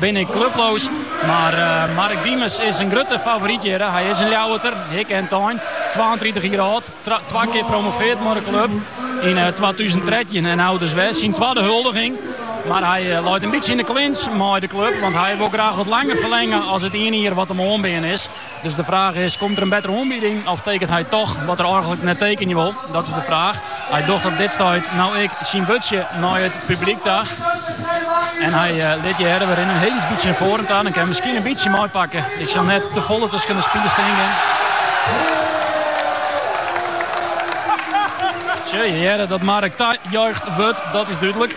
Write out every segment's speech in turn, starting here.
Bin ik klubloos, mar Mark Diemers is in grutte favoryt hjir. Hy is in Ljouwerter, hikke en tein, twaentritich jier âld, twa kear promoveard mei de klup yn twatûzen trettjin en no dus wer syn twadde huldiging. Mar hy leit in bytsje yn de clinch mei de klup, want hy wol graach wat langer ferlenge as it iene jier wat him oanbean is. Dus de fraach is, komt der in bettere oanbieding of tekent hy toch wat er eigenlik net tekenje wol? Dat is de fraach. Hy docht op dit stuit no ek syn wurdsje nei it publyk ta. En hy uh, eh, lit je hearre, we rinne in hiel bytsje nei foaren ta. Dan kinne we miskien in bytsje meipakke. Ik sil net te folle tusken de spilers stean. Tsja, ja dat Mark tajuicht wurdt, dat is dúdlik.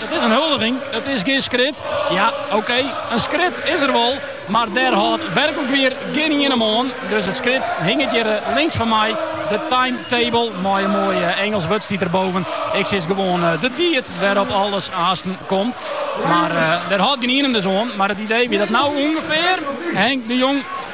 It is in huldiging, it is gjin skript. Ja, okee, in skript is der wol, mar dêr hâldt werklik wier gjin ien him oan. Dus it skript hinget hjir links fan my, de timetable, mei in moai Ingelsk wurd stiet derboven. Ik sis gewoan de tiid wêrop alles aansten komt. Mar dêr hâldt gjin ien him dus oan. Mar it idee wie dat no ûngefear Henk de Jong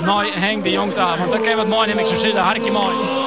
Nei Henk de Jong ta, want dan kinne we wat meinimme, ik zou sizze, harkje mei.